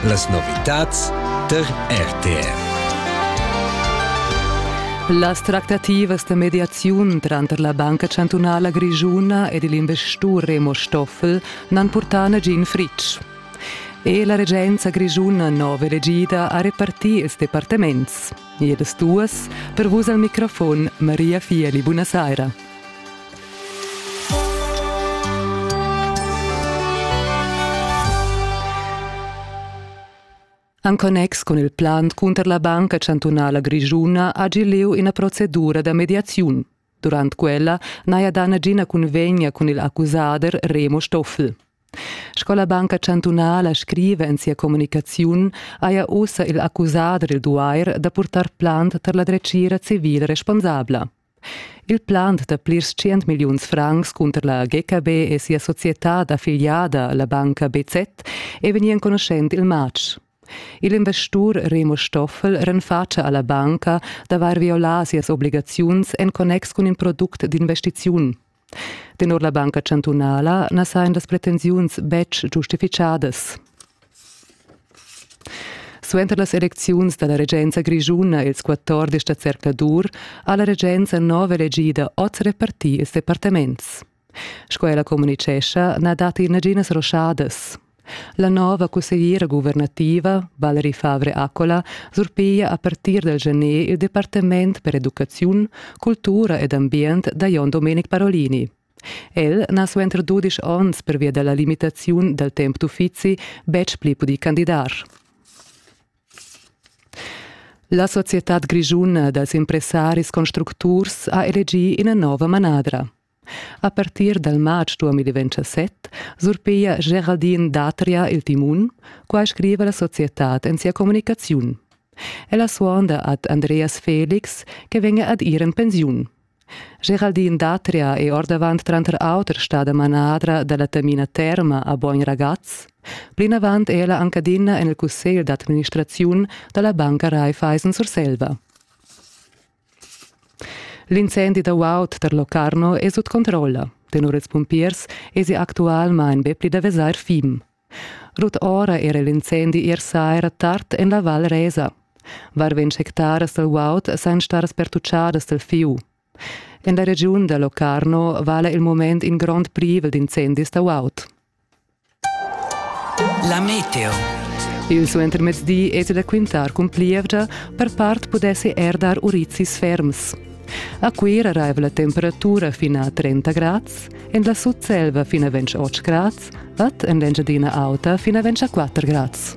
Las novitads tar RTR. Las tractativas da mediaziun tranter la Banca chantunala grischuna ed il investur Remo Stoffel n'han purtà nagin fritg. E la regenza grischuna nova elegida ha repartì ils departaments. Jedes duas, per vus al microfon Maria Fieli, buonasera. En connex con il plan cunter la Banca Chantunala Grischuna ha leu ina procedura da mediaziun. Durant quella n'haja dà nagina cunvegna cun il accusader Remo Stoffel. Sco la Banca chantunala scriva en sia communicaziun, haja ussa il accusader il duair da purtar plant tar la dretgira civil responsabla. Il plant da plirs 100 milliuns francs cunter la GKB e sia societad affiliada, la banca BZ, è vegnì enconuschent il matg. Il investur Remo Stoffel renfatscha alla banca d'avair violà sias obligaziuns en connex cun in product d'investiziun. Tenor la banca chantunala na sajan las pretensiuns betg giustifichadas. Suenter las elecziuns dalla regenza grischuna ils 14 da zercladur ha la regenza nova elegida oz repartir ils departaments. Sco ella communitgescha na datti naginas ruschadas. La nova cussegliera guvernativa Valerie Favre Accola surpiglia a partir dal gener il departament per educaziun, cultura ed ambient da Jon Domenic Parolini. El n'ha suenter dudisch onns pervia da la limitaziun dal temp d'uffizi betg pli pudì candidar. La societad grischuna dals impressaris constructurs ha elegì ina nova manadra. A partir dal matg 2017 surpiglia Geraldine Datria il timun, quai scriva la societad en sia communicaziun. Ella suonda ad Andreas Felix che vegna ad ir en pensiun. Geraldine Datria è ordavant tranter auter stada manadra da la Tamina Terma a Bogn Ragaz. Plinavant è ella anc adina en il cussegl d'administraziun da la banca Raiffeisen Surselva. L'incendi da guaud da Locarno è sut controlla. Tenor ils pumpiers èsi actualmain be pli da vesair fim. Rut ora era l'incendi ier saira tard en la Val Resa. Varventg hectaras dal guaud san staras pertucciadas dal fiu. En la regiun da Locarno vala il moment in grond privel d'incendis da guaud. La meteo. Il suentermezdi es da quintar cun plievgia, per part pudessi er dar urizis ferms. A Cuira raiva la temperatura fin a 30 grads, en la Sutselva fin a 28 grads, ad en l'Engiadina Auta fin a 24 grads.